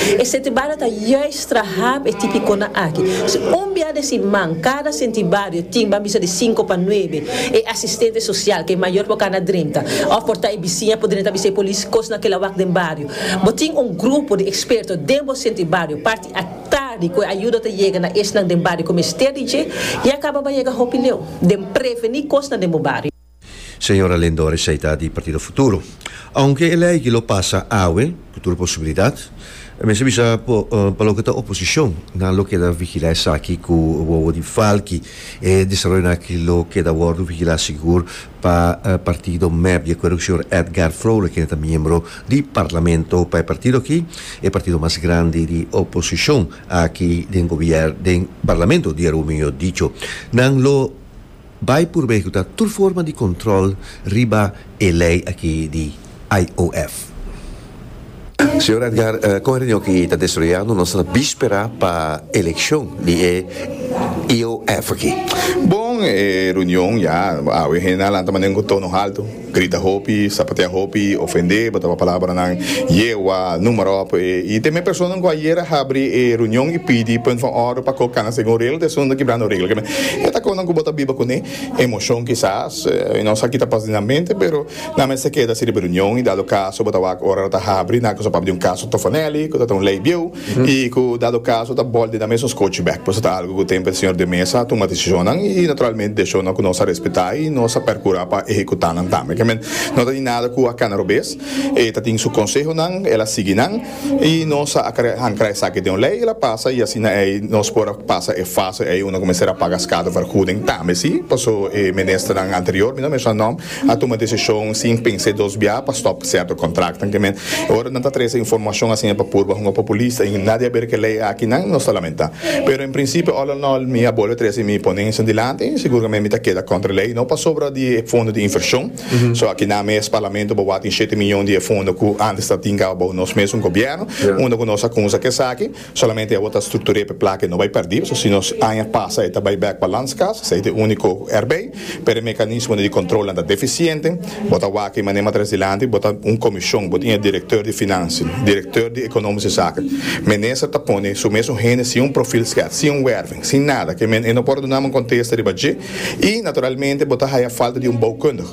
E sentibario ta juist traha e tipiconan aki. Si un bia den siman cada sentibario tin ban bisa di cinco pa nuebe e asistente social cu e mayor por cana drenta of por ta e bisiña por drenta bisa e polis cosnan kila wak den bario. Bo tin un grupo di experto den bo sentibario parti a tardi cu e ayudo ta yega na esnan den bario cu mester di dje, ya caba ba yega hopi leu den preveni cosnan den bo bario. Señora Lindor es ei ta di Partido Futuro. Aunke e lei aki lo pasa awe, ku tur posibilidat, mester bisa pa loke ta oposishon, nan lo keda vigilá esaki ku wowo di falki. E desaroyonan aki lo keda wòrdu vigilá sigur pa partido mep. Di akuerdo ku señor Edgar Vrolijk, kende ta miembro di Parlamento pa e partido aki, e partido mas grandi di oposishon aki den gobièrn, den Parlamento di Heru, mihó dicho, nan lo. Bai purbé ku ta tur forma di kontròl riba e lei aki di IOF. Señor Edgar, kon e reunion aki ta desroyando nos na bispera pa elekshon di e IOF aki? Bon, e reunion ya awe hende a lanta mano en ku tono haltu. Grita hopi, sapatea hopi, ofendé, botaba palabranan yegua, numerop. I te mes personanan ku ayer a habri e reunion i pidi punt van order pa kok kana segun regla, te esun ta kibrando e regla. E ta konan ku bo ta biba ku ne emoshon kisas, i nos a kita pas den nan mente, pero nan mester keda si riba e reunion i dado kaso bo ta wak ora lo ta habri nan ku sa papia di un kaso tofonelli ku ta den un lei bieu. i ku dado kaso ta bòlde na mesun skochi bèk. Por eso ta algu ku tempu e señor de mesa a tuma desishonnan i naturalmente desishonnan ku nos a respetá i nos a perkurá pa ehekutá nan tambe. Kèmen no ta tin nada ku a kana robes. E ta tin su konsehonan, el a sigui nan i nos a ankra esaki den un lei, el a pasa i asina ei nos por a pasa e fase ei unda ku mester a paga skadevergoeding tambe. Sí, paso e ministernan anterior, mi no a menshona nòm. a tuma desishon sin pens'é dos bia pa stòp sèrto kontraktnan ke men e ora nan ta trese informashon asi e pa purba hunga populista i nadie a ber ke lei aki nan nos ta lamenta pero en prinsipio òl òl òl mi a bolbe trese mi ponencia dilanti siguramente mi ta keda kontra lei no pasobra di e fondo di invershon so aki nan mes parlamento bo wak tin shete miyon di e fondo ku antes ta tin kaba bou nos mes un gobièrnu unda ku nos a kunsa ke esaki. Solamente abo ta struktur'é p'e plaka e no bai pèrdí, so si nos aña pasa e ta bai bèk pa Landskas, esei ta e úniko erbei, pero e mekanismonan di kontrolnan ta defisiente, bo ta wak ei mané matres dilanti, bo ta un komishon, bo tin e direktor di finansi, direktor di ekonómiske zaken, minister ta pone su mes un hende sin un profil skeat, sin un wèrving, sin nada, ke men e no por dunanan un kontesta riba dje, i naturalmente bo ta haya falta di un boukundig,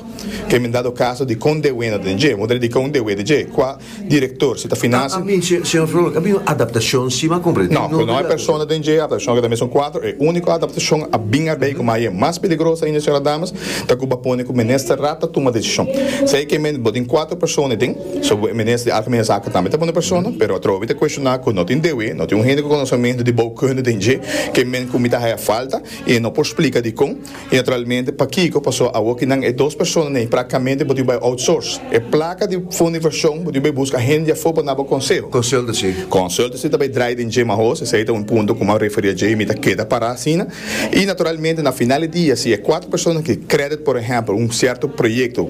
ke men dado kaso di kon dewena den dje, bo ta dedika un dewe di dje, kua. Director, si ta finasi. A mi, señor Frollo, a bin un adaptacion sima compre di. No, cu no e persona den dje adaptacion cu ta mesun cuadro. E unico adaptacion a bin a bay, coma aye mas peligroso ainda, señora damas, ta cu bo a pone cu Minister Raad ta tuma decision. Si aye ke bo tin cuatro persona den, so bo e Minister di Algemene Zaken tambe ta pone persona, pero atrobe mi ta cuestiona cu no tin dewe, no tin un hende cu conocemento di boukunde den dje, ke men cu mi ta haya falta y e no por splica dicon. I naturalmente pakiko paso awor ki nan e dos personanan ei praktikamente bo dibi bai outsource e plaka di fondo invershon bo dibi bai buska hende afo pa nabo konseho. Consultancy. Consultancy ta bai drai den dje ma hos esei ta un punto ku m'a referia dje i mi ta keda pará asina i naturalmente na final di dia si e kuater personanan ki credit por ehempel un sierto proyekto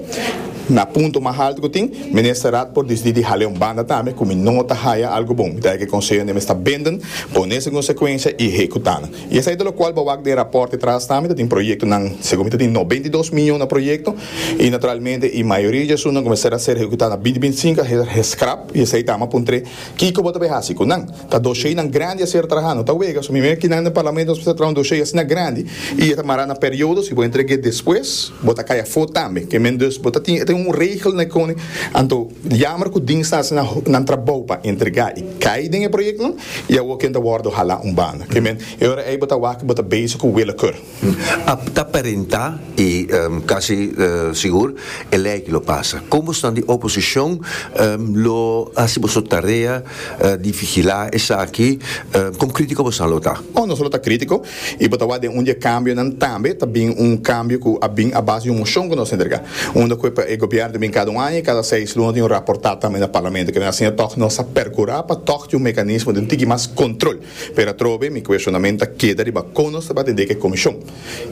na punto mas haltu ku tin Ministerrad por disidi di hal'e un banda tambe ku mi no ta haya algu bon mi ta haya ke konseho n'e mester benden pone su konsekuensia i hekutá nan. I esei ta lokual bo wak den rapòrt e tras tambe ta tin proyektonan, segun mi ta tin noventa i dos mion na proyekto i naturalmente i mayoria di esunnan kumesá a ser ehekutá na binti binti i sinku a ser heskrap i esei ta ama puntr'é kiko bo ta bai hasi ku nan. Ta dosheinan grandi a ser trahá, no ta wega, so mi mira kinan den parlamento nos mester traha un doshei asina grandi i e ta mará na periodo, si bo entreg'é despues bo ta kai afó tambe, ke men dus bo ta tin e ta un regel na e kone, anto. Jammer cu dingstas nan nan trabou pa entrega y cay den e projectnan y awor ken ta wordo hala un banda. Ke men, e ora ey bo ta wak y bo ta bezig cu willekeur. A ta perenta y casi sigur e ley aki lo pasa. Con bosnan di oposicion lo haci boso tarea di vigila esaki? Con critico bosnan lo ta? Oh, nos lo ta critico. I bo ta wak den un di e kambionan tambe ta bin un kambio ku a bin a base di un moshon ku nos a entrega unda ku e gobièrnu ta bin kada un aña i kada seis luna ta tin raportá tambe na parlamento. Kine'e asina tòg nos a perkurá pa tòg tin un mekanismo di un tiki mas kontrol. Pero atrobe mi kueshonament ta keda riba kon nos ta tabata deka e komishon.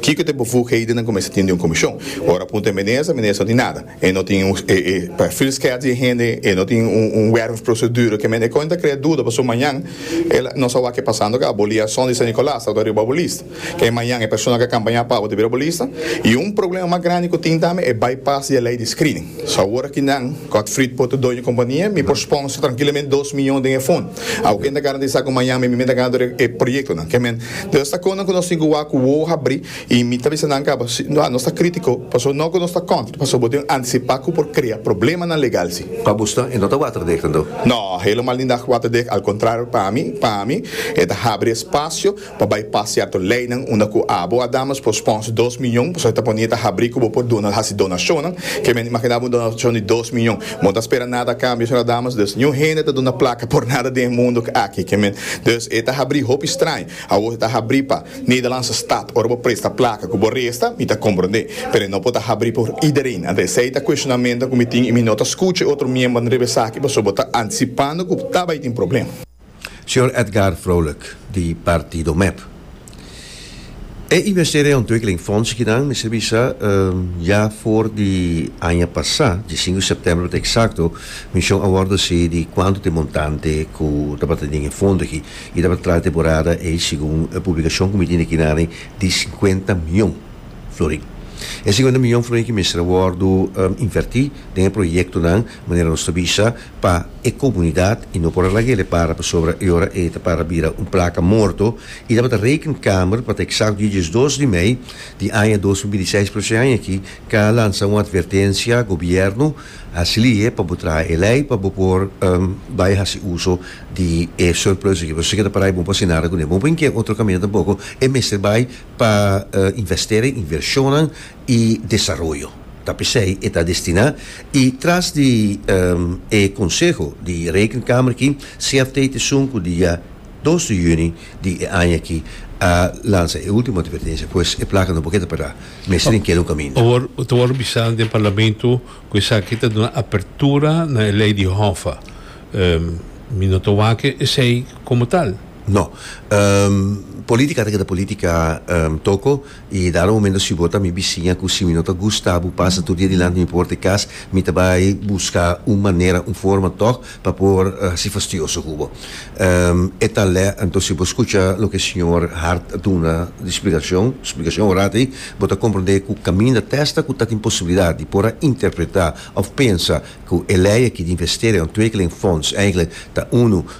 Kiko ta e bevoeghedennan ku mester tin den un komishon? Ora a punta e minister, e minister no tin nada. E no tin un e perfil skeerd di e hende, e no tin un werf procedure ke men e kon ta krea duda paso mañan e la nos a wak ke pasando ke aboli a son di San Nicolas ta riba bo lista ke mañan e persona ke a kampaña pa bo ta bira bo lista y un problema mas grandi ku tin tambe e bypass di e lei di screening so awor aki nan ku ak Frit por ta doño kompania mi por sponsor trankilament dos miyon den e fon a ken ta garantisa ku mañan mi mi ta gana tur e proyektonan ke men ta kon nan ku nos tin ku wak ku wowo habri. Y mi ta bisa nan caba, si nos ta critico, pasobra no cu nos ta contra, pasobra bo tin anticipa cu por crea problemanan legal si. Pa Buston e no ta waterdek nan do? No, helemaal niet dat waterdek, al contrario pa mi, pa mi, e ta habri espacio pa bypass cierto leynan unda cu abo a damas por sponsor dos miyon, pasobra e ta pone e ta habri cu bo por duna haci donacionnan, que men imagina un donacion di dos miyon, bo no ta spera nada a cambio señora damas, dus niun hende ta duna placa por nada den e mundo aki, ke men, dus e ta habri hopi straño. Awo e ta habrí pa Nederlandse Staat. Ora bo presta plaka ku bo resta, mi ta komprondé. Pero e no por ta habrí por iedereen. Anto esei ta kueshonamentonan ku mi tin i mi no ta skucha e otro miembernan riba esaki pasobra bo ta antisipando ku ta bai tin problem. Señor Edgar Vrolijk, di Partido mep. E investeringsontwikkelingfondsgenan, mester bisa, ya for di aña pasá, di sinku sèptèmber pa ta eksakto, Mision a wòrdu hesei di kuantu ta e montante ku tabata den e fondo aki. I ta pa traha temporada ei segun e publikashon ku mi tin aki na ri di sinkuenta mion florin. E sinkuenta mion florin aki mester a wòrdu invertí den e proyektonan manera nos ta bisa pa e komunidat i no por a laga el a para pasobra e ora ei ta para bira un plaka morto i tabata Rekenkamer pa ta eksakto di diesdos di mei di aña dos mil binti seis pero si aña aki ka a lansa un atvertensia gobièrnu Hasi lihe pa bo traha e lei pa bo por bai hasi uso di e surplus aki. Bo ta keda para e bon pa hacienda ara kuné. Bo por inkia otro caminda tampoco. E mester bai pa investera en invershonnan y desaroyo. Ta pesey e ta destina. Y tras di e conseho di Rekenkamer aki, CFT ta esun cu dia. Dos di yüni di e aña aki a lansa e último advertencia, pues e placa no por keda pará, mester den keda un kaminda. Awor ta wòrdu bisa den parlamento ku esaki ta duna apertura na e lei di hòfa. Mi no ta wak esei komo tal. No. Polítika ta keda polítika toko I dado momento si bo ta mi bisiña ku si mi no ta gusta bo pasa tur dia dilanti mi por ta e kas mi ta bai buska un manera un forma tòg pa por hasi fastioso ku bo. E ta lè anto si bo skucha loke señor Hart a duna di splikashon splikashon ora ei bo ta komprondé ku kaminda tèsta ku ta tin posibilidat di por a interpretá òf pensa ku e lei aki di investering òf tweekeling fonds eigelik ta unu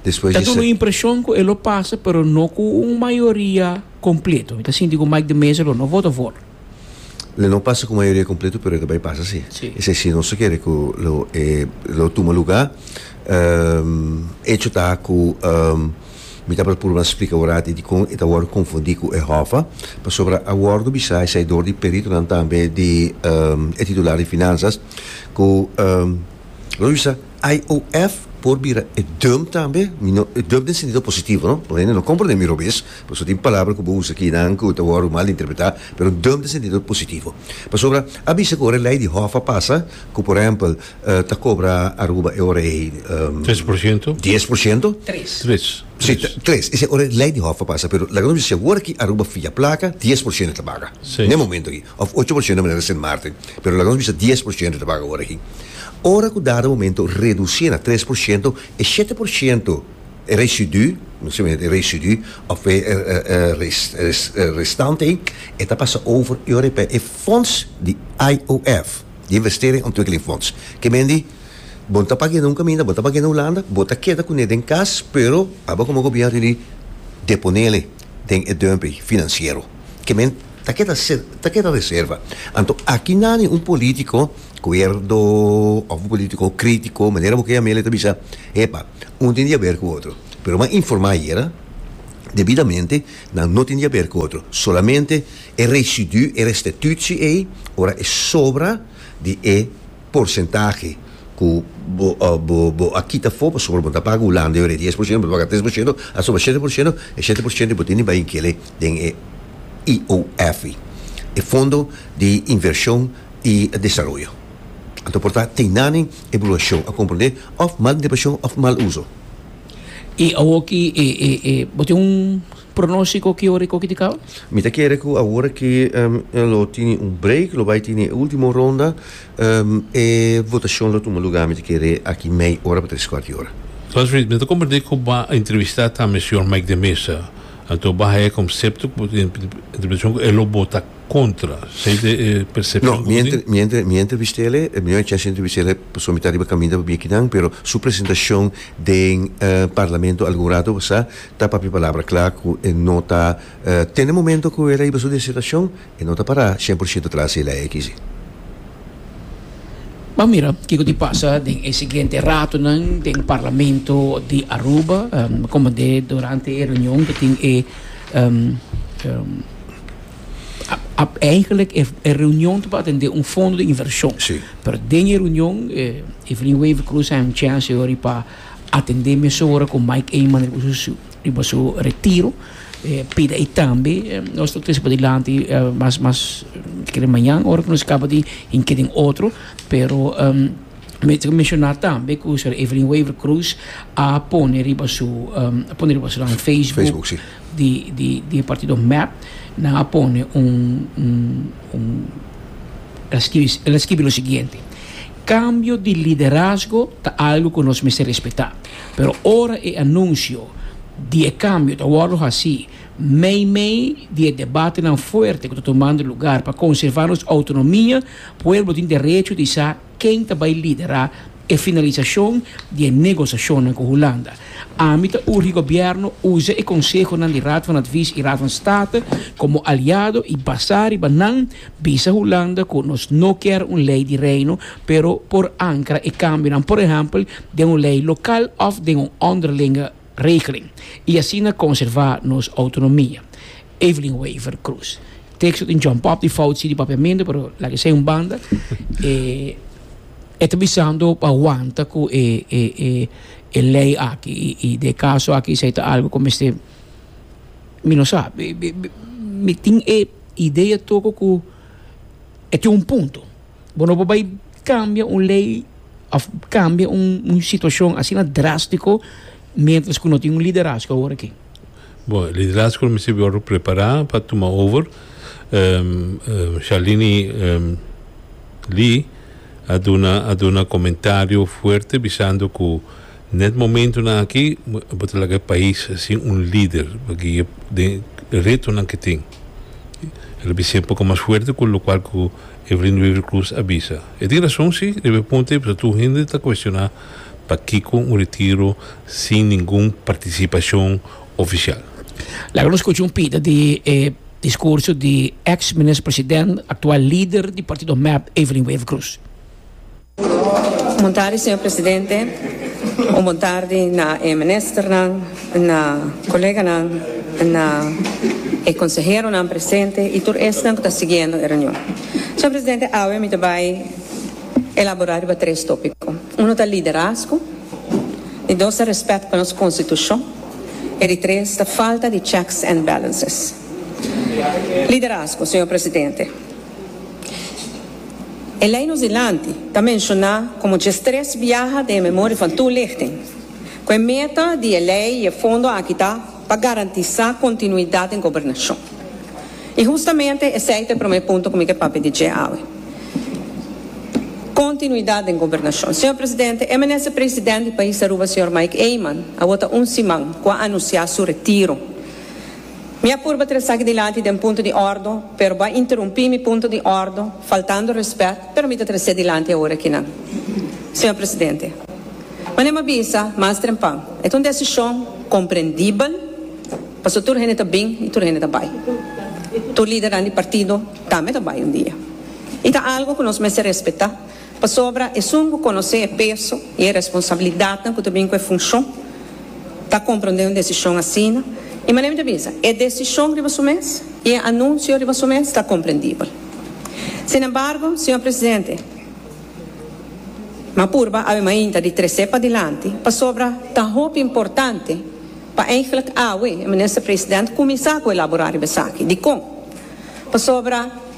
Ta duna un impresion cu e lo pasa pero no cu un mayoria completo. Mi ta sinti cu Mike de Meza lo no vota for. Lo no pasa cu mayoria completo pero e ta bay pasa si. Esey si nos ta kere cu lo e lo tuma luga. Hecho ta cu mi tabata purba splica ora aki dicon e ta wordo confundi cu e Hoffa pasobra a wordo bisa esey door di peritonan tambe di e titular di Finanzas cu lo bisa IOF por bira e dum tambe, mi no, e dum den sentido positivo no, por hende no comprende mi robes, por eso tin palabra cu bo usa aki nan cu ta wordo mal interpreta, pero dum den sentido positivo. Pasobra a bisa cu ora e ley di hof a pasa cu por ehempel ta cobra Aruba e ora ey Tres por ciento? dies por ciento, Tres. Tres. si, Tres. tres, esey ora e ley di hof a pasa, pero laga nos bisa si awor aki Aruba fia placa, dies por ciento ta baga, Sí. n'e momento aki, of ocho por ciento manera Sint Maarten. Pero laga nos bisa dies por shento ta paga ora aki. Ora ku dado momento redusié na tres por shento, e shete por shento, e residú, nos ta bini e residú òf e restante ei, e ta pasa over i ora pa e fonds di IOF, di Investering Ontwikkeling Fonds. Ke men di, Bo no ta pag'é na un kaminda, bo no ta pag'é na Hulanda, bo ta keda kuné den kas, pero aba komo gobièrnu di deponel'e. den e dùmping finansiero. Ke men ta keda ta keda reserva. Anto aki nani un polítiko kuerdo òf un polítiko krítiko, manera bo ke yam'é, lo ta bisa, epa, un tin di aber ku otro. Pero bo a informá ayera debidamente, nan no tin di aber ku otro. Solamente e residú, e restitutsi ei, ora e sobra di e. porcentahe cu bo a kita for pasobra bo ta paga Hulanda e ora e dies por ciento bo ta paga tres por ciento asoba shete por ciento e shete por ciento y bo tin di bay kele den e IOF i e fondo di inversion y desaroyo anto por ta tin nani evaluacion a comprende of mal interpretation of mal uso. Y awoki bo tin un. Pronostico ki ora i koki di kau? Mi ta kere ku awor aki lo tini un break, lo bai tini e ultimo ronda, e votashon lo tuma lugá mi ta kere aki mei ora pa tres kuart di ora. Bas Reed, mi ta komprendé ku bo a entrevistá tambe señor Mike de Mesa, anto bo a haña konsepto ku bo tin interpretashon ku e lo bota kontra. Esei ta e persepshon ku bo tin? No, mi a entrevist'e, mi no a chèns di entrevist'e pasobra mi ta riba kaminda pa bia kinan, pero su presentashon den Parlamento algun rato pasá, Ta papia palabra cla cu e no ta tene momento cu e ta hiba su disertacion, e no ta para cien por ciento tras e ley aki si. Bo a mira kico tin pasa den e siguiente ratonan den Parlamento di Aruba, como de durante e reunion ta tin e Eigenlijk e reunion ta pa atende un fondo di inversion, pero den e reunion Evelyn Wever-Croes a anuncia ansiohori pa. Atendé mesora ku Mike Eman riba su riba su retiro. E pida ei tambe nos ta trese pa dilanti mas mas mi kere mañan ora ku nos kaba di hink'é den otro, pero mi ta menshoná tambe ku señora Evelyn Wever Croes a pone riba su a pone riba su nan Facebook di di di e partido mep nan a pone un un un el a skibi el a skibi lo siguiente. Kambio di liderazgo ta algu ku nos mester respetá, pero ora e anunsio di e kambio ta wòrdu hasí meimei di e debatenan fuerte ku ta tumando lugar pa konservá nos outonomia, pueblo tin derecho di sa ken ta bai liderá e finalisashon di e negosashonnan ku Hulanda. Ami ta urgi gobièrnu usa e konsehonan di Raad van Advies i Raad van State komo aliado i basá riba nan Bisa Hulanda cu nos no kier un ley di Reino, pero por ankra e cambionan, por ehempel, den un ley local of den un onderlinge regeling, y asina conserva nos autonomia. Evelyn Wever Croes. Texto tin John Pop di fout si di papiamento, pero laga esai un banda. E, e ta bisando pa wanta cu e, e, e, e ley aki, y, y den e caso aki esai ta algo cu mester. Mi no sa. Mi tin e idea toko ku e tin un punto. Bo no por bai kambia un lei òf kambia un situashon asina drástiko miéntras ku no tin un liderasko awor aki. Bo e liderasko lo mester wòrdu prepará pa tuma over. Shalini Lee a duna a duna komentario fuerte bisando ku. N'e momentunan aki bo ta laga e pais sin un lider pa guia den e retonan ke tin. El a bisia poko mas fuerte ku lokual ku Evelyn Wever Croes a bisa. E tin rason si, riba e punto ei pasobra tur hende ta kuestioná pakiko un retiro sin ningun partisipashon ofisial. Laga nos kucha un pida di e diskurso di eks minister president, aktual lider di partido mep, Evelyn Wever Croes. Bon tardi señor presidente, un bon tardi na e ministernan, na coleganan, na e conseheronan presente y tur esnan cu ta siguiendo e reunion. Señor presidente, awe mi ta bay elabora riba tres topico. Uno ta liderazgo, di dos ta respet pa nos constitucion y di tres ta falta di checks and balances. Liderazgo, señor presidente. E lei nos dilanti ta menshoná komo djes tres biaha den e memoria van toelichting, ku e meta di e lei i e fondo aki ta pa garantisá kontinuidat den gobernashon. I hustamente esei ta e promé punto ku mi ke papia di dje awe. Kontinuidat den gobernashon. Señor Presidente, e Minister President di pais Aruba, señor Mike Eman, awor ta un siman ku a anunsiá su retiro. Mi a purba tresa aki dilanti den punto di ordo, pero bo a interumpi mi punto di ordo faltando respet, pero mi ta tres'é dilanti awor akinan. Señor Presidente. Mane mi a bisa mas trempan, e ta un desishon komprendibel pasobra tur hende ta bin i tur hende ta bai. Tur lidernan di partido tambe ta bai un dia. I ta algu ku nos mester respetá. Pasobra esun ku konosé e peso i e responsabilidatnan ku ta bin ku e funshon ta komprondé un desishon asina. I manera mi ta bisa, e desishon riba su mes i e anunsio riba su mes ta komprendibel. Sinembargo, señor presidente, mi a purba abi mainta di tres'é padilanti pasobra ta hopi importante pa eigentlik awe e minister-president kuminsá ku elaborá riba esaki. Dikon? Pasobra.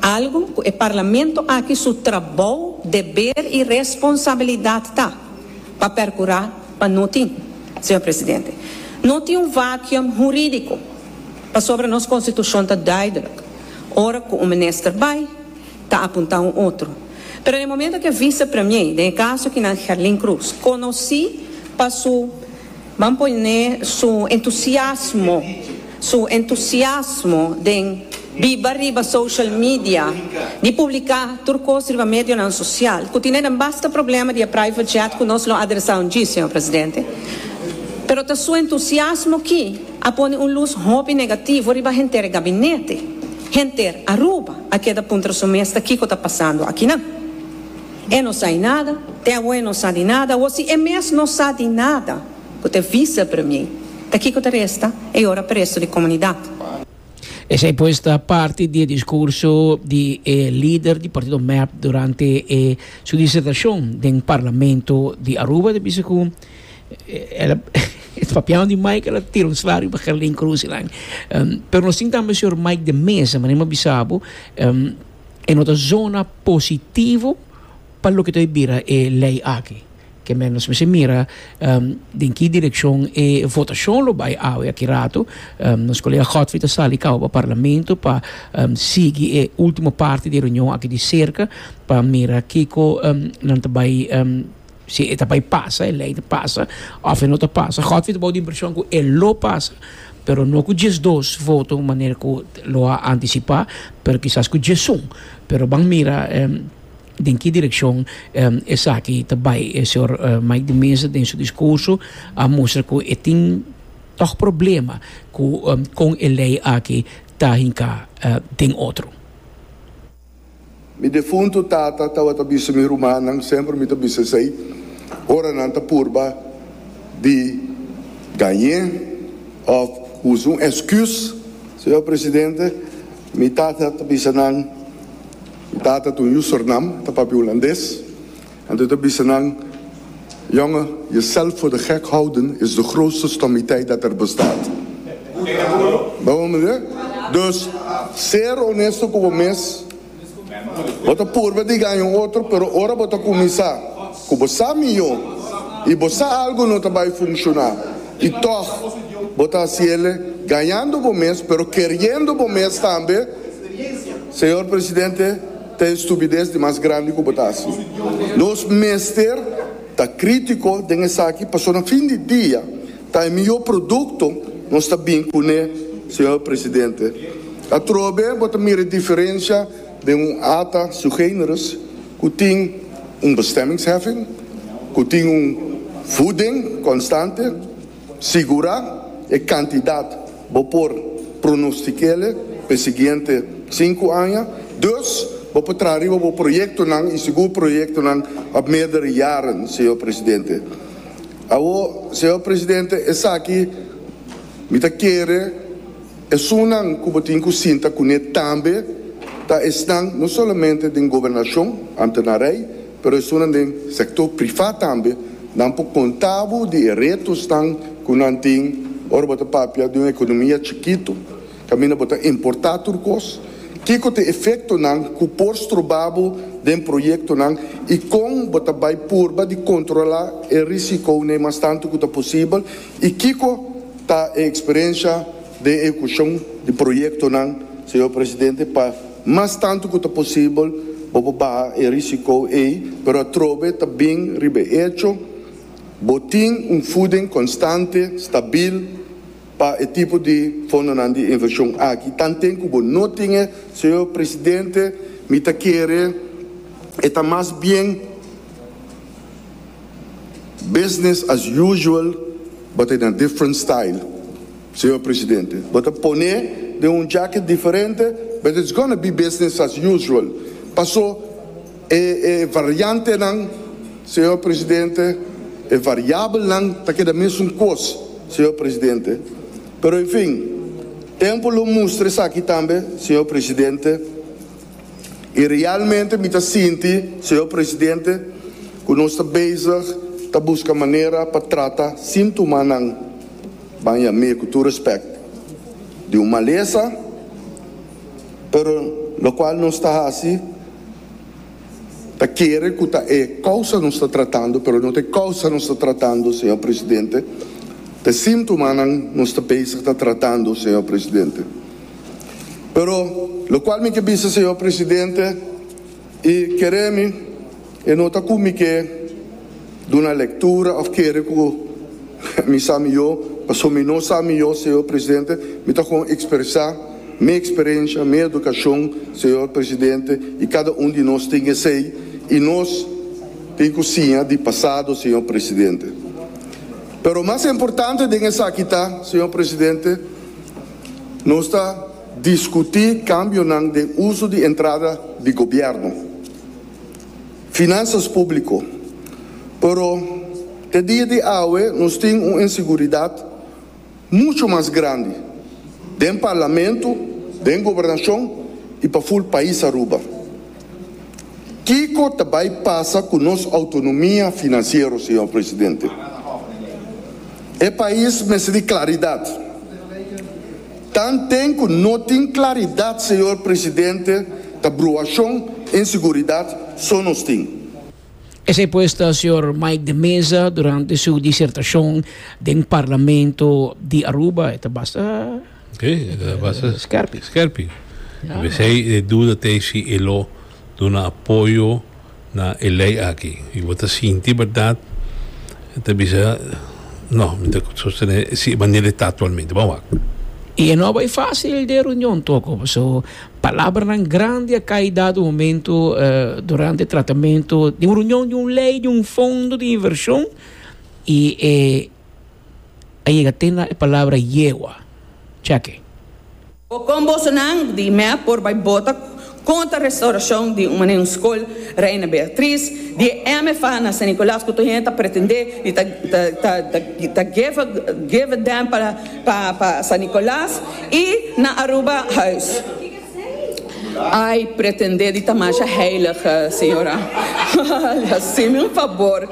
Algu cu e Parlamento aki su trabou, deber y responsabilidad ta pa percura pa no tin, Señor Presidente. No tin un vacuum huridico pasobra nos Constitucion ta duidelijk, ora cu un minister bay, ta apunta un otro. Pero den e momento cu e Vice-Premier, den e caso aki nan Gerlin Cruz, conoci pa su. Ban pone su entusiasmo, su entusiasmo den biba riba social media, di publica tur cos riba medionan social, cu tine den basta problema di e private jet cu nos lo adresa un dji, Señor Presidente. Pero ta su entusiasmo ki a pone un luz hopi negativo riba henter e gabinete. Henter Aruba a keda puntra su mes ta kico ta pasando akinan. E no sa di nada, te awo e no sa di nada, o si e mes no sa di nada ku te visa premier, ta kiko ta resta e yora preso di komunidat? Esei pues ta parti di e diskurso di e lider di partido mep durante e su disertashon den parlamento di Aruba. Ta bisa ku el a papiao di Mike, el a tira un slario pa Gerlin Croes y nan. Pero nos tin tambe señor Mike de Meza, manera mi a bisa bo. e no ta zona positivo pa loke ta bira e lei aki. Ke men nos mester mira den ki direkshon e votashon lo bai awe aki rato. Nos kolega Godfrey ta sali kaba pa parlamento pa sigui e ultimo parti di e reunion aki di serka pa mira kiko nan ta bai Si e ta bai pasa, e lei ta pasa, òf e no ta pasa. Godfrey ta bou di impreshon ku e lo pasa, pero no ku diesdos voto manera ku lo a antisipá, pero kisas ku diesun. Pero ban mira den ki direkshon esaki ta bai. E señor Mike de Meza den su diskurso a mustra ku e tin tòg problema ku kon e lei aki ta hinká den otro. Mi defuntu tata tawata bisa mi rumannan semper mi ta bisa esei ora nan ta purba di gañ'é of usa un eskùs. Señor Presidente, mi tata ta bisa nan, mi tata ta un Yusornam, ta papia Hulandes. Anto ta bisa nan, Jonge, je zelf voor de gek houden is de grootste stommiteit dat er bestaat. Bo me mira? Dus, ser honesto cu bo mes. Bo ta purba di gaña un otro, pero ora bo ta cuminsa cu bo sa mijo y bo sa algo no ta bay funciona y tog bo ta haci el'e, gañando bo mes pero keriendo bo mes tambe, Señor Presidente, Ta e stupides di mas grandi ku bo ta hasi. Nos mester ta krítiko den esaki pasobra na fin di dia ta e mihó produkto nos ta bin kuné, señor presidente. Atrobe bo ta mira e diferensha den un ata sui generis ku tin un bestemmingsheffing, ku tin un voeding konstante. Sigura e kantidat bo por pronostik'e p'e siguiente sinku aña. Dus, bo por traha riba bo proyektonan i sigur proyektonan òf meerdere jaren, señor presidente. Awor, señor presidente, esaki mi ta kere. Esunnan ku bo tin ku sinta kuné tambe ta esnan no solamente den gobernashon, ante na rei, pero esunnan den sektor prifá tambe. Nan por konta bo di e retosnan ku nan tin ora bo ta papia di un ekonomia chikitu kaminda bo ta importá tur kos. Kiko ta e efektonan ku por stroba bo den proyektonan i kon bo ta bai purba di kontrolá e risikonan mas tantu ku ta posibel? I kiko ta e eksperensia den ehekushon di proyektonan, Señor Presidente, pa mas tantu ku ta posibel bo por baha e risiko ei, pero atrobe ta bin riba e echo bo tin un fuding konstante, stabil pa e tipo di fondonan di invershon aki? Tanten ku bo no tin e, Señor Presidente, mi ta kere e ta mas bien. Business as usual bo ta e na different style Señor Presidente. Bo ta pone den un jacket diferente but it's gonna be business as usual. Paso e e variantenan Señor Presidente, e variabelnan ta keda mesun kos Señor Presidente. Pero en fin, tempo lo mustra esaki tambe Señor Presidente. I realmente mi ta sinti, Señor Presidente, cu nos ta bezig ta busca manera pa trata sin tuma nan baña mee cu tur respect di un malesa, pero locual nos ta haci ta kere cu ta e causa nos ta tratando, pero no ta e causa nos ta tratando, Señor Presidente, ta e sin tuma nan nos ta bezig ta tratando, Señor Presidente. Pero lo cual mi ke bisa Señor Presidente y kere mi e no ta cu mi ke duna lectura of kere cu mi sa miyo, pasobra mi no sa miyo Señor Presidente, mi ta con expresa mi experencia, mi educacion Señor Presidente y cada un di nos tin esey y nos tin cu siña di pasado Señor Presidente. Pero mas importante den esaki ta Señor Presidente, Nos ta diskutí kambionan den uso di entrada di gobièrnu, finansas públiko, pero te dia di awe nos tin un inseguridat muchu mas grandi den Parlamentu, den Gobernashon i pa ful pais Aruba. Kiko ta bay pasa cu nos autonomia financiero, Señor Presidente? E pais mester di claridad. Tan den cu no tin claridad, Señor Presidente, ta bruacion, inseguridad so nos tin. Esey pues ta Señor Mike de Meza durante su disertacion den Parlamento di Aruba. E ta basta. Skerping. Pesei e duda ta si e lo duna apoyo na e lei aki. I bo ta sinti bèrdat e ta bisa, No, mi ta sostené si e manera e ta aktualmente. Bo a wak. I e no a bai fásil den e reunion toko, paso palabranan grandi a kai dado momento durante e tratamentu den un reunion di un lei, di un fondo di invershon, i e a yega te na e palabra yegua. Cheke. Bo con bosonan di Imea por bai bota contra restauracion di un mane un scol Reina Beatriz di e MFA na San Nicolas cu tur hende ta pretende di ta ta ta geve geve den pa pa San Nicolas y na Aruba huis. Ai, pretende di ta masha heilig, señora. Haceme un fabor.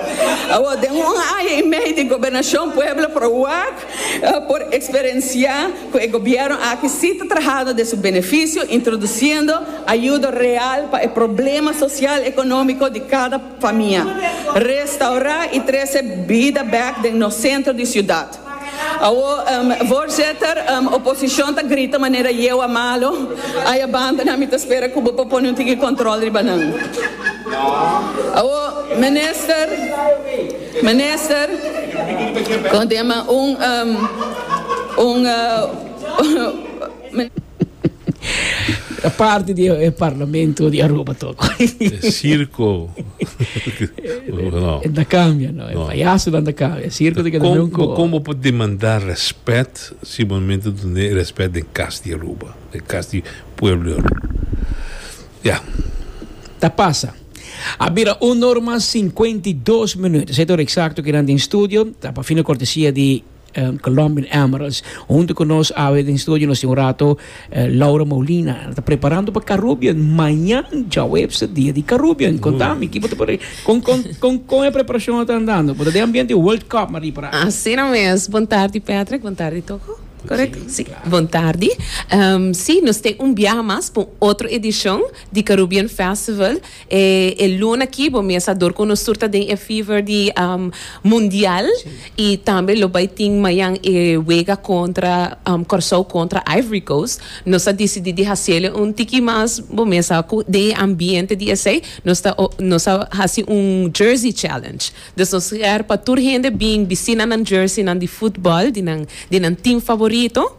Awor, den un aña i mei di Gobernacion Pueblo Pro wak a por experencia cu e Gobierno aki si ta trahando den su beneficio, introduciendo ayudo real pa e problema social economico di cada famia, restaura i trece bida bek den nos centro di ciudad. Awo, Voorzitter, oposicion ta grita manera yewa malo ay a banda nan mi ta spera cu bo por pone un tiki control riba nan. Awo, Minister, Minister, con tema un, un. Mester parti di e parlamento di Aruba tok. E circo. no. Enta cambia, no. E no. payaso dan ta cambia. E circo te keda com, nunco. Bo como por demandar respect si momento donde respect den cas di Aruba, den cas di pueblo di Aruba. Ya. Yeah. Ta pasa. A bira un norma 52 minutos. Eto exacto que dan den studio. Ta pa fina cortesia di Colombian Emeralds. Hunto cu nos awe den studio nos tin un rato eh, Laura Molina. Ta preparando pa Caribbean. Mañan, Jawebse, dia di Caribbean. Contami, kibo te pare? Con, con, con, con e preparacion ta andando? Porque de ambiente World Cup mari para. Así no mes. Bon tardi Patrick, bon tardi Toco. Correcto? Sí, sí. Claro. Bon tardi. Um, sí, nos ten un biaha mas pa un otro edicion di Caribbean Festival. E e luna aki bo mes a dor cu nos tur ta den e fever di mundial y tambe lo bay tin mayan e wega contra Corsou contra Ivory Coast. Nos a dicidi di hacele un tiki mas bo mes a cu den e ambiente di esey nos ta nos a haci un jersey challenge. Dus nos ger pa tur hende bin bistí nan nan jerseynan di footbal di nan di nan team favorito.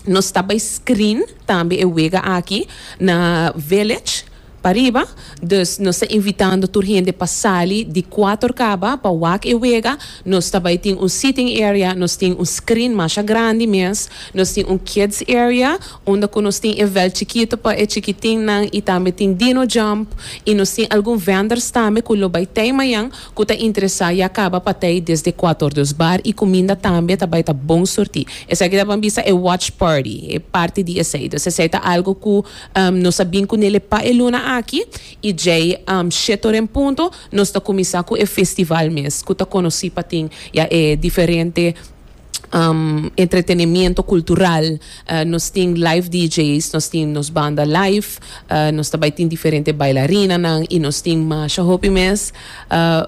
Nos ta bai screen tambe e wega aki na Village pariba, dus nos ta invitando tur hende pa sali di cuater caba pa wak e wega. Nos ta bai tin un sitting area, nos tin un screen masha grandi mes, nos tin un kids area unda cu nos tin e veld chikito pa e chikitinnan y tambe tin dino jump y nos tin algun vendors tambe cu lo bai tey mayan. Ku ta interesá ya kaba patei desde kuator dus bar i kuminda tambe ta bai ta bon surtí. Esaki ta ban bisa e watch party, e parti di esei. Dus esei ta algu ku nos a bin ku nele pa e luna aki i djei shét ora en punto nos ta kuminsá ku e festival mes ku ta konosí pa tin ya e diferente entretenemiento cultural nos tin live DJ's nos tin nos banda live nos ta bay tin diferente bailarinanan y nos tin masha hopi mes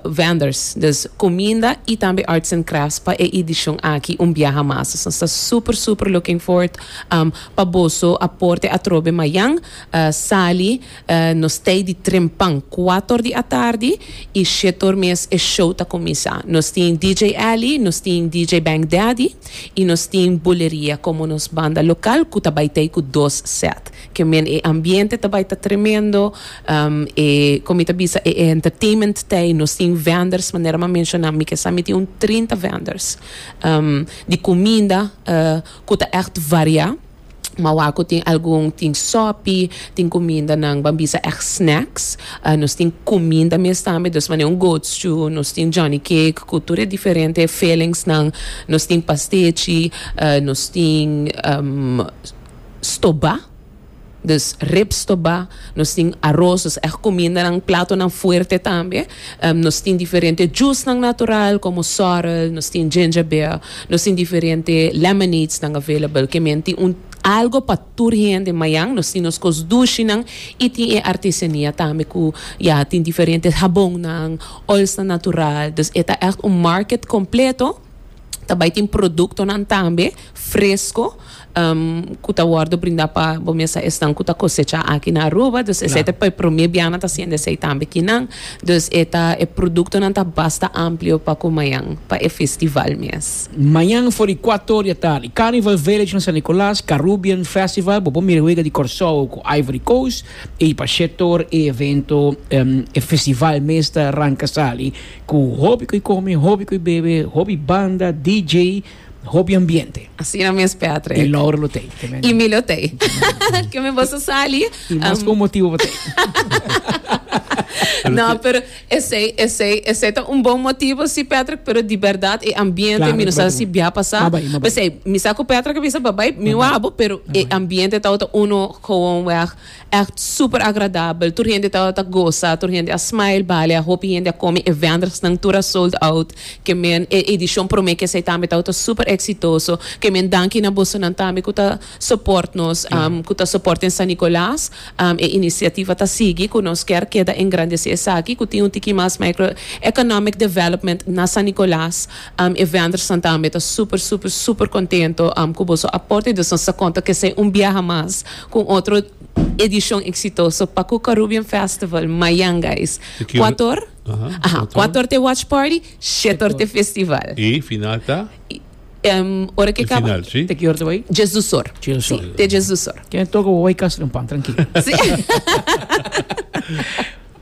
vendors dus cuminda y tambe arts and crafts pa e edicion aki un biaha mas nos ta super super looking forward pa boso a porte atrobe mayan sali Nos tei di trempan kuator di atardi i shetor mes e show ta kuminsá. Nos tin DJ Ellie, nos tin DJ Bank Daddy i nos tin Buleria komo nos banda lokal ku ta bai tei ku dos sèt. Ke men e ambiente ta bai ta tremendo, e kon mi ta bisa e entertainment tei, nos tin vendors manera m'a menshoná mi ke sa mi tin un trinta vendors di kuminda ku ta ègt variá. Mawa cu tin algun, tin sopi, tin cumindanan, ban bisa ec snacks. Nos tin cuminda mes tambe, dus mane un goat stew, nos tin Johnny cake cu tur e diferente fillingsnan, nos tin pastechi, nos tin stoba, dus rib stoba, nos tin aros, dus ec cumindanan, platonan fuerte tambe. Nos tin diferente jusnan natural komo sorrel, nos tin ginger beer, nos tin diferente lemonadesnan available. Ke men tin un algo pa tur hende. Mañan nos tin nos kos dushinan i tin e artesania tambe ku ya tin diferente habonnan, oilsnan natural. Dus e ta ègt un market kompleto. Ta bai tin produktonan tambe fresko ku ta wòrdu brindá pa bo mes a esnan ku ta kosechá aki na Aruba. Dus esei ta e promé bia nan ta hasienda esei tambe kinan. Dus e ta e produktonan ta basta amplio pa ku mañan pa e festival mes. Mañan for di kuato or di atardi. Carnival Village na San Nicolas, Carrubian Festival, bo por mira wega di Kòrsou ku Ivory Coast. I pa shetoor e evento, e festival mes ta ranka sali. Ku hopi ku e kome, hopi ku e bebe, hopi banda, DJ, hopi ambiente. Asina mes Patrick. I Laura lo tei. Ke men. I mi lo tei. Ke men boso sali. I mas ku un motibu pa tei. No, pero esei, esei, esei ta un bon motibu si Patrick, pero di berdad e ambiente Claro, mi no di sa berdad. si bia pasa. Ma bai, ma bai. Pesei, mi sa ku Patrick a bisa babai, mi wou abo, pero e ambiente tabata uno gewoon weg. Echt super agradabel, tur hende tabata ta gosa, tur hende a smile bale, a hopi hende a komi e vendersnan tur a sold out, ke men e edishon prome ke esei tambe tabata super eksitoso, ke men danki na bosonan tambe ku ta soport nos, ku ta soport den San Nicolas, e inisiativa ta sigui, ku nos ker keda engrandesi esaki, ku tin un tiki mas micro economic development na San Nicolas, e vendersnan tambe ta super super super kontento ku boso aporte, dus nos ta konta ke esei un biaha mas. Cu un otro edicion exitoso pa cu Carubbean Festival mayan guys. Cuator Cuator ta e watch party, shetor ta e festival. Y final ta? Ora que caba. Ta ki or ta bay? Dies do Sor. Si, ta e Dies do Sor. Ken a toca bo bay Castro en pan, tranquilo.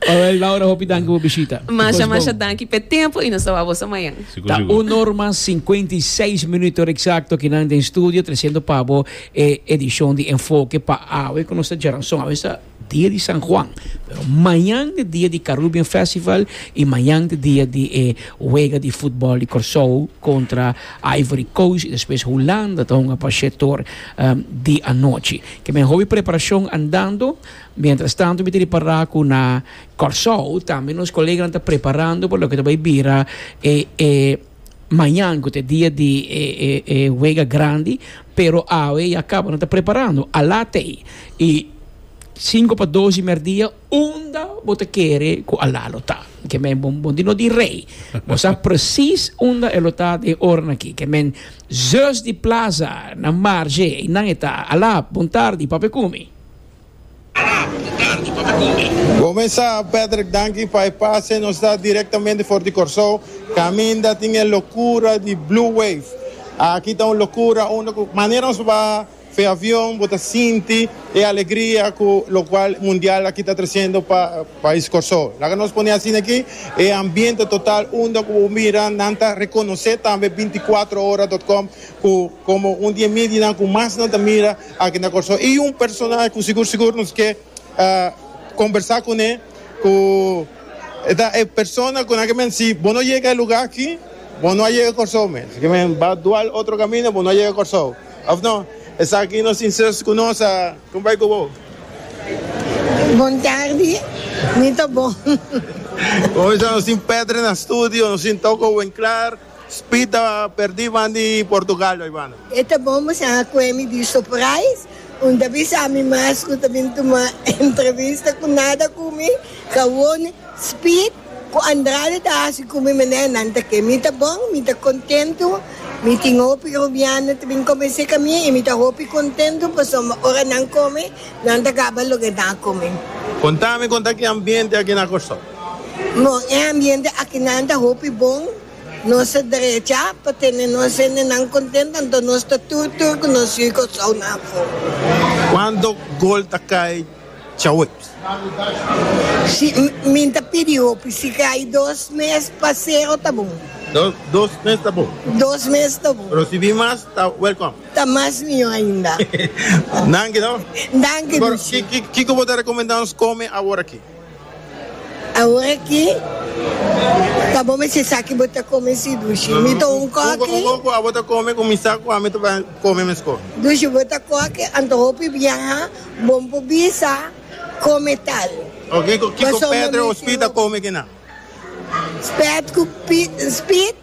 Awel Laura hopi danki bo bishita. Masha masha danki p'e tempo y nos ta wak boso mañan. Sigur Ta sigur. un norma cincuenta y seis minuto ora exacto aki nan den studio treciendo pa bo e edicion di Enfoke pa awe cu nos ta djara son. Awe esta dia di San Juan, pero mañan ta dia di Carrubian Festival y mañan ta dia di e wega di futbol di Corsou contra Ivory Coast y despues Hulanda ta hunga pa shetoor di anochi. Kimen hopi preparacion andando. Mientras tanto mi ta repará cu na Kòrsou tambe nos koleganan ta preparando pa loke ta bay bira e e mañan cu ta e dia di e e e wega grandi pero awe ya caba nan ta preparando a la tey y sinku pa dos di merdia unda bo ta kere cu a la lo ta ke men bo bo no di rey bo sa precies unda e lo ta den oran aki ke men zus di plaza na marge eynan e ta a la bon tardi papekumi. Gome sa, Patrick danki pa e pase nos da direktamente for di Kòrsou, kaminda tin e lokura di Blue Wave. Aki ta un lokura unda ku manera nos ba fe avion bo ta sinti e alegria ku lokual mundial aki ta trasendo pa pais Kòrsou. Laga nos pone asina aki e ambiente total unda ku bo mira nan ta rekonosé tambe binti kuatro ora dot kòm ku Komo un di e medianan ku mas nan ta mira aki na Kòrsou i un personahe ku sigur sigur nos ke kombersá kuné ku e ta e persona ku nan ke men si bo no yega e lugá aki bo no a yega Kòrsou mes si ke men bai dual otro kaminda bo no a yega Kòrsou òf no esaki nos sinseros ku nos a kumbai ku bo. Bon tardi, mi ta bon. Bon mester nos tin Pètre na studio nos tin Toko wen klar. Speed ta perdi ban di Portugal bai banda. E ta bon bo sa a kue mi di surprise, un ta bisa mi mas ku ta bin tuma entrevista ku nada ku mi, Kawone, Speed ku Andrade ta hasi ku mi manera nan ta ke. Mi ta bon, mi ta kontentu, mi tin hopi rubiano ta bin komens'é ka mi i mi ta hopi kontentu pasobra ora nan kome nan ta kaba loke nan a kome. Konta mi kon ta ki ambiente aki na Kòrsou. Nos e ambiente akinan ta hopi bon, nos ta drecha pa tene nos hendenan kontent anto nos ta tur tur ku nos yu i Kòrsounan afó. Kuantu gol ta kai Chaweps? Si mi ta pidi hopi, si kai dos mes pa sero ta bon. Dos mes ta bon? Dos mes ta bon. Pero si bin mas ta wèlkòm? Ta mas mihó ainda. Danki no. Danki Dushi. Kiko bo ta rekomendá nos kome awor aki? Awor aki ta bo mester sa ki bo ta come si Dushi. Mi ta un coque. Cu cu abo ta come cu mi sa cu ami ta bay come mesco? Dushi, bo ta coque anto hopi biaha, bo n'po bisa come tal. Oke, cu kico Pet re o Spit ta come kinan? Spet cu Pit, Spit.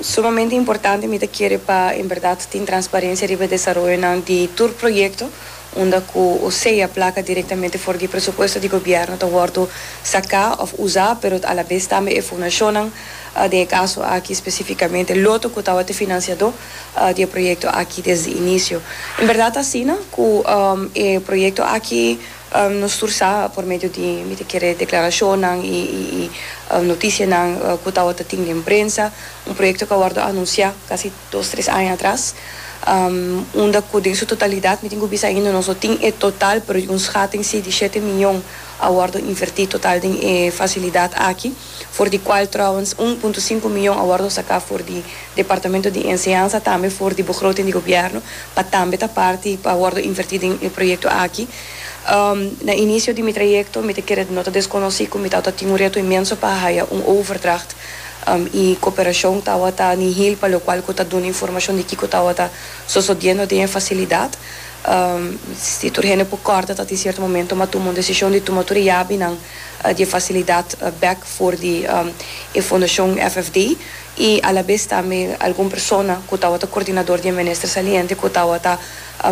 Sumamente importante, mi ta kere pa en berdad tin transparencia riba e desaroyonan di tur proyecto unda cu osea placa directamente for di e presupuesto di gobierno ta wordo saca of usa pero a la vez tambe e fundacionnan, den e caso aki specificamente Lotto cu tawata e financiador di e proyecto aki desde inicio. En berdad asina cu e proyecto aki. Nos tur sa, por medio di mi ta kere declaracionnan y noticianan cu tawata tin den prensa, un proyecto cu a wordo anuncia casi dos, tres aña atras, unda cu den su totalidad, mi tin cu bisa ainda nos no tin e total, pero un schating si di shete miyon a wordo inverti total den e facilidad aki. for di cual trouwens un punto sinku miyon a wordo sacá for di Departamento di Enseñansa tambe for di begroting di Gobierno pa tambe ta parti pa wordo invertí den e proyecto aki. Na inicio di mi trayecto mi ta kere no ta desconocí cu mi tawata tin un reto inmenso pa haya un overdracht y cooperacion tawata nihil pa locual cu ta duna informacion di kico tawata sosodiendo den e facilidad. Si tur hende por corda ta tin cierto momento mi a tuma un decision di tuma tur e yabinan. di e facilidad bek for di e Fundacion FFD y a la vez tambe algun persona cu tawata coordinador di e Minister Saliente cu tawata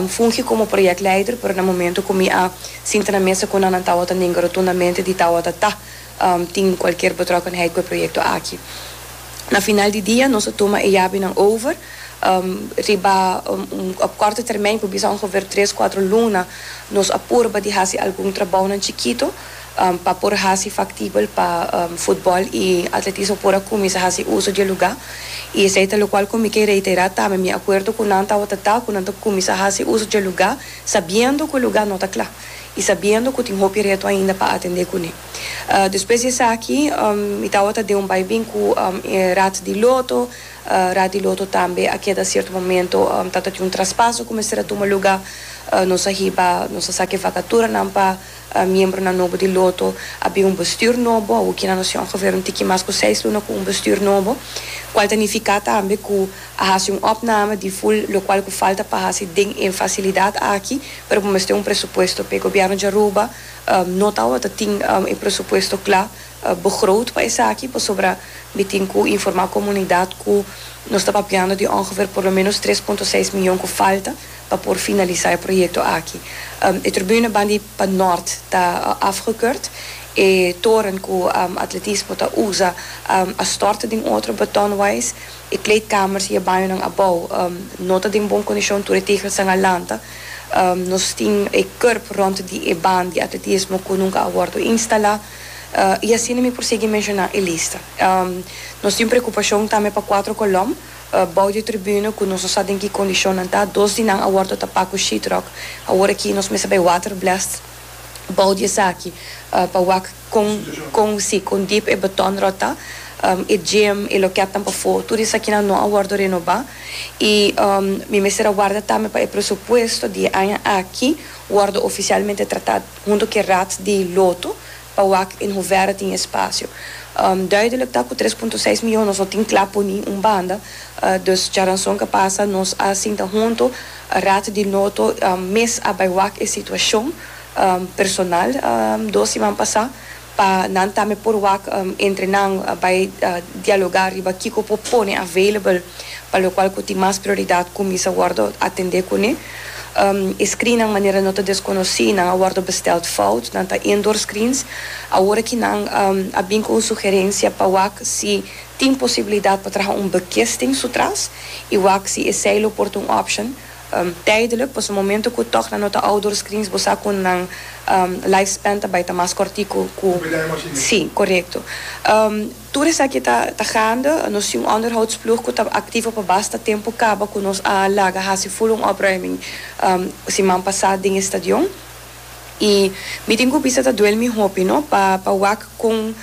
fungi como project leider pero na momento cu mi a sinta na mesa cu nan nan tawata nenga rotundamente di tawata ta tin cualkier betrokkenheid cu e proyecto aki. Na final di dia nos a tuma e yabinan over riba op kòrte termijn ku bisa ongever tres kuatro luna nos a purba di hasi algun trabounan chikito pa por hasi faktibel pa futbòl i atletismo por a kuminsá hasi uso di e lugá i esei ta lokual ku mi ke reiterá tambe mi akuerdo ku nan tabata ta ku nan ta kuminsá hasi uso di e lugá sabiendo ku e lugá no ta kla i sabiendo ku tin hopi reto ainda pa atendé kuné. Despues di esaki mi tabata den un bai bin ku e rat di loto, rat di loto tambe a keda sierto momento ta tin un traspaso ku mester a tuma lugá, nos a hiba, nos a sa ke vakaturanan pa miembronan nobo di loto, a bin un bestür nobo, awor kina nos tin ongeveer un tiki mas ku seis luna ku un bestür nobo, kual ta nifiká tambe ku a hasi un opname di ful lokual ku falta pa hasi den e fasilidat aki, pero bo mester un presupuesto p'e. Gobièrnu di Aruba No tawata tin e presupuesto cla begroot pa esaki, pasobra mi tin cu informa comunidad cu nos ta papiando di ongeveer por lo menos tres punto seis miyon cu falta pa por finalisa e proyecto aki. E tribune ban di pa Noord ta afgekeurd, e toren cu Atletismo ta usa a stort den otro betonwais, E kleedkamers i e bañonan abou no ta den bon kondishon, tur e tegelsan a lanta. Nos tin e kurb rònt di e ban di atletismo ku nunka a wòrdu instalá. I asina mi por sigui menshoná e lista. Nos tin preokupashon tambe pa kuatro kolòm bou di e tribuna ku nos no sa den ki kondishonnan ta. Dos di nan a wòrdu tapá ku sheetrock. Awor aki nos mester bai waterblast bou di esaki pa wak. Con consi con dip e botón rota, e gem, e loket nan pafó, tur esakinan no a wordo renoba, i mi mester a warda tambe pa e presupuesto di e aña aki wordo oficialmente trata hunto cu e Raad di Loto pa wak in hoeverre tin e spacio. Duidelijk ta cu tres punto seis miyon nos no tin cla poni un banda, dus djaranson cu a pasa nos a sinta hunto Raad di Loto mes a bay wak e situacion, personal dos siman pasá pa nan tambe por wak entre nan bai dialogá riba kiko por pone available pa lokual ku tin mas prioridat kuminsa wòrdu atendé kuné. E screennan manera no ta deskonosí, nan a wòrdu bestèld fout, nan ta indoor screens. Awor aki nan a bin ku un sugerensia pa wak si tin posibilidat pa traha un bekisting sutras i wak si esei lo por ta un option. Tijdelijk, pasobra momento ku tòg nan no ta ouders krins bo sa ku nan life span ta bai ta mas kòrtiku ku si, korekto. Tur esaki ta ta gaande. Nos tin un onderhoudsploeg ku ta aktivo pa basta tempu kaba ku nos a laga hasi ful un opruiming siman pasá den e stadion. y mi tin cu bisa ta duel mi hopi no pa pa wak con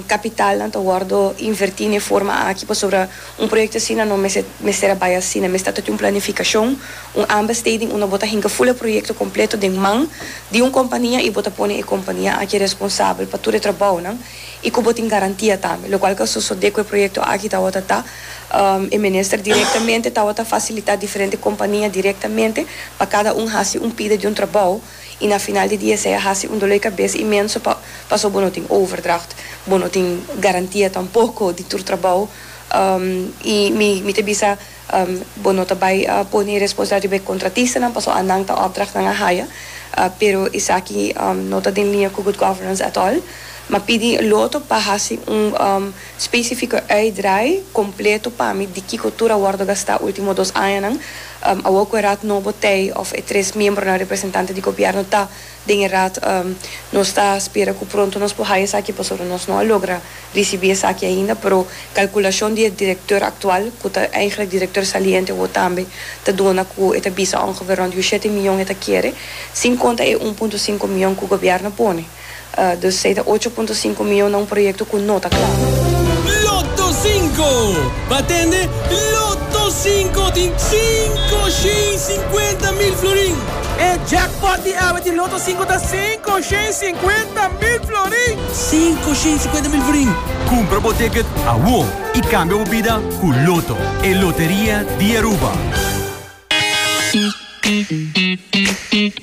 capitalnan ta wordo inverti n'e forma aki pasobra un proyecto asina no mester mester a bay asina mester ta tin un planificacion un ambesteding unda bo ta hinca full e proyecto completo den man di un compania y bo ta pone e compania aki responsabel pa tur e trabaonan y cu bo tin garantia tambe locual cu a sosode cu e proyecto aki ta awor ta ta E minister direktamente tawata fasilitá diferente kompania direktamente pa kada un hasi un pida di un trabou i na final di dia esei a hasi un dolé kabes imenso pa paso bo no tin overdracht, bo no tin garantia tampoko di tur trabou i mi mi ta bisa bo no ta bai pone e responsabilidat riba e kontratistanan paso anan ta opdrachtnan a haya pero esaki no ta den liña ku good governance at all. Mi a pidi loto pa hasi un. Specifico uitdraai completo pa mi di kico tur a wordo gasta ultimo dos añanan, awor cu e Raad nobo tei of e tres miembronan representante di Gobierno ta den e Raad, nos ta spera cu pronto nos por haya esaki pasobra nos no a logra ricibi esaki ainda, pero calculacion di e Directeur actual, cu ta eigenlijk Directeur saliente awor tambe, ta duna cu e ta bisa ongeveer rond di ushete miyon e ta kere, sin conta e un punto sinku miyon cu Gobierno pone. Dus ei ta ocho punto sinku mion na un proyekto ku no ta kla. Lotto Sinko! Pa tende Lotto Sinko tin sinku shen sinkuenta mil florin! E jackpot di awe di Lotto Sinko ta sinku shen sinkuenta mil florin! Sinku shen sinkuenta mil florin! Kumpra bo ticket awó i kambia bo bida ku Lotto, e loteria di Aruba!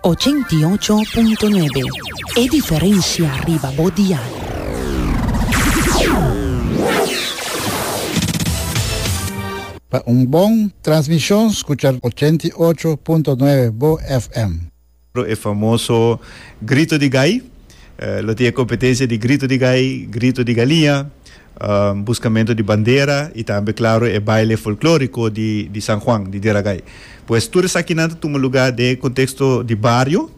Ochenta i ocho punto nuebe, e diferensia riba bo dial. Pa un bon transmishon skucha ochenta i ocho punto nuebe bo FM. E famoso Grito di Gai lo tin e kompetensia di Grito di Gai, Grito di Galia, Buscamento di bandera y tambe claro e baile folklorico di San Juan di Diragai. Pues tur esakinan ta tuma lugar den e contexto di bario.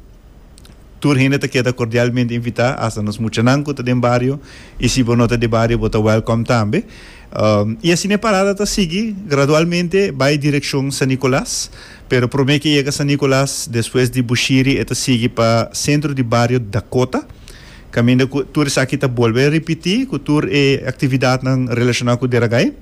Tur hende ta keda cordialmente invita, hasta nos muchanan cu ta den bario y si bo no ta den bario bo ta welcome tambe. Y asina e parada ta sigui gradualmente bay direccion San Nicolas, pero prome ke yega San Nicolas despues di Bushiri e ta sigui pa centro di bario Dakota. Caminda cu tur esaki ta bolbe ripiti cu tur e actividadnan relacionau cu Deragai.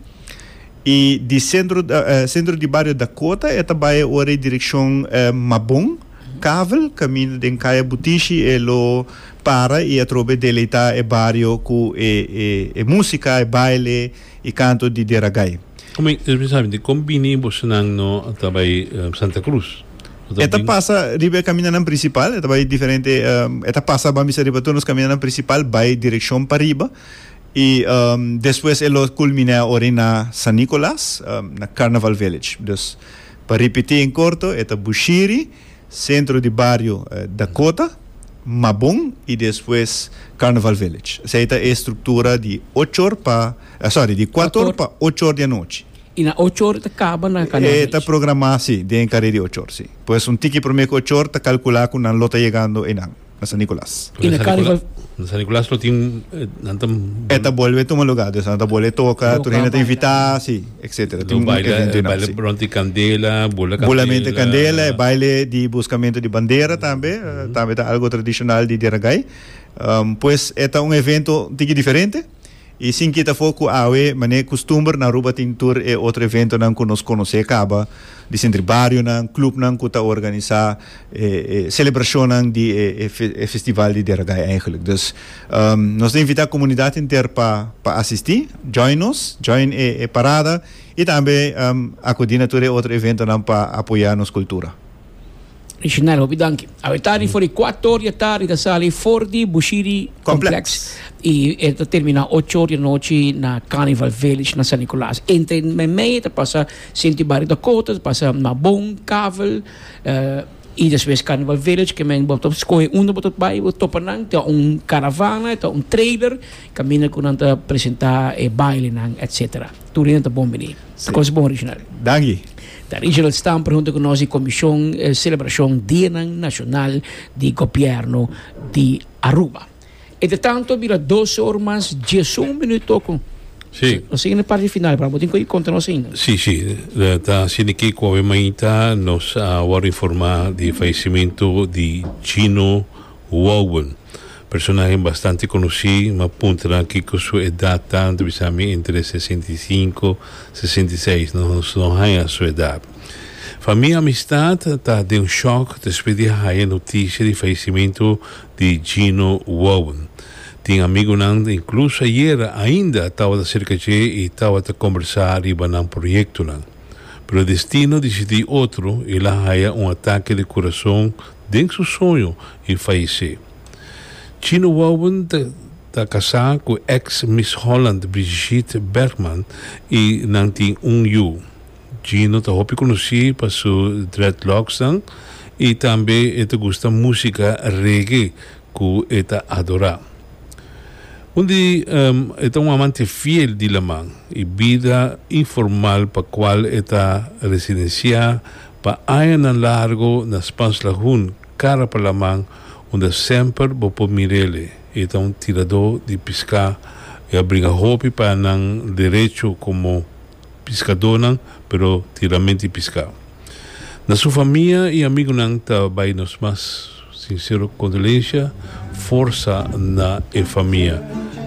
Y di Centro Centro di Bario Dakota e ta bay awor e direccion Mabon, Kavel, caminda den Kaya Butishi e lo para y atrobe deleita e bario cu e e e musica, e baile y canto di Deragai. Como e, esaki sabi, di con bini bosonan no ta bay Santa Cruz? E ta pasa riba e kaminanan prinsipal, e ta bai diferente, um, e ta pasa bambisa riba tur nos kaminanan prinsipal, bai direkshon pa riba, i um, despues e lo kulminá ori na San Nicolas, um, na Carnival Village. Dus, pa ripití en korto, e ta Bushiri, sentro di bario eh, Dakota, Mabon i despues Carnival Village. Esei ta e struktura di ochor pa, eh, sorry, di kuator Kuator. pa ochor di anochi. Y na ocho or ta caba na Canal Beach? E ta programa si, den car'e di ocho or si. Pues un tiki prome cu ocho or ta calcula cu nan lo ta yegando eynan na San Nicolas. Y na Carnival? Na San Nicolas lo tin, nan ta. E ta bolbe tuma lugar, dus nan ta bolbe toca, tur hende ta invita, si, etc. Tin un evento eynan si. Baile bront di candela, bula candela. Bulament di candela, e baile di buscamento di bandera tambe, tambe ta algo tradicional di Diragai. Pues e ta un evento un tiki diferente. I sin kita for ku awe manera kustumber na Aruba tin tur e otro eventonan ku nos konosé kaba, di sentri barionan, klupnan ku ta organisá e e selebrashonnan di e e festival di Deragay eigenlik. Dus nos ta invitá komunidat henter pa pa asistí, join nos, join e e parada i tambe akudí na tur e otro eventonan pa apoyá nos kultura. Original, hopi danki. Awe tardi for di 4 ora di tardi ta sali for di Bushiri Complex. Y e ta termina 8 ora di nochi na Carnival Village na San Nicolas. Entre en meimei ta pasa Senti Barrio Dakota, ta pasa Mabon, Kavel, eh, y despues Carnival Village, ke men bo ta skohe unda bo ta bai, bo topa nan, ta un caravana, ta un trailer, Caminda cu nan ta presenta e bailenan etc. Tur hende ta bon bini. Ta cosa bon Reginald. Danki. Ta Reginald Stamper hunto cu nos di Comision Celebracion Dianan Nacional di Gobierno di Aruba. Entre tanto bira dos or mas diesun minuto cu Si. Nos ta yendo na parti final pero amo tin cu e conta nos ainda. Si, si. Ta hacendo ki cu awe mainta nos a word informa di fallecimento di Gino Wowel, personahe bastante conoci, m'a punta nan kico su edad ta, n'ta bisa mi entre sesenta y cinco, sesenta y seis, no no haya su edad. Fa mi amistad ta den un shock despues di haya noticia di fallecimento di Gino Wowel. Tin amigonan incluso ayer ainda tabata cerca dje y tabata combersa riba nan proyectonan. Pero Destino disidí otro i el a haya un atake di kurason den su soño i fayesé. Chino wòuwen ta kasá ku èks Miss Holland Brigitte Bergman i nan tin un yu. Chino ta hopi konosí pa su dreadlocks nan i tambe e ta gusta músika reggae ku e ta adorá. Un di e ta un amante fiel di laman i bida informal pa kual e ta residensiá pa añanan largu na Spanslahun, kara pa laman, unda semper bo por mir'ele. E ta un tiradó di piská i a bringa hopi payanan derechu komo piskadónan, pero tin ralmenti piská. Na su famia i amigunan ta bai nos mas sinsero kondolensia, forsa na e famia.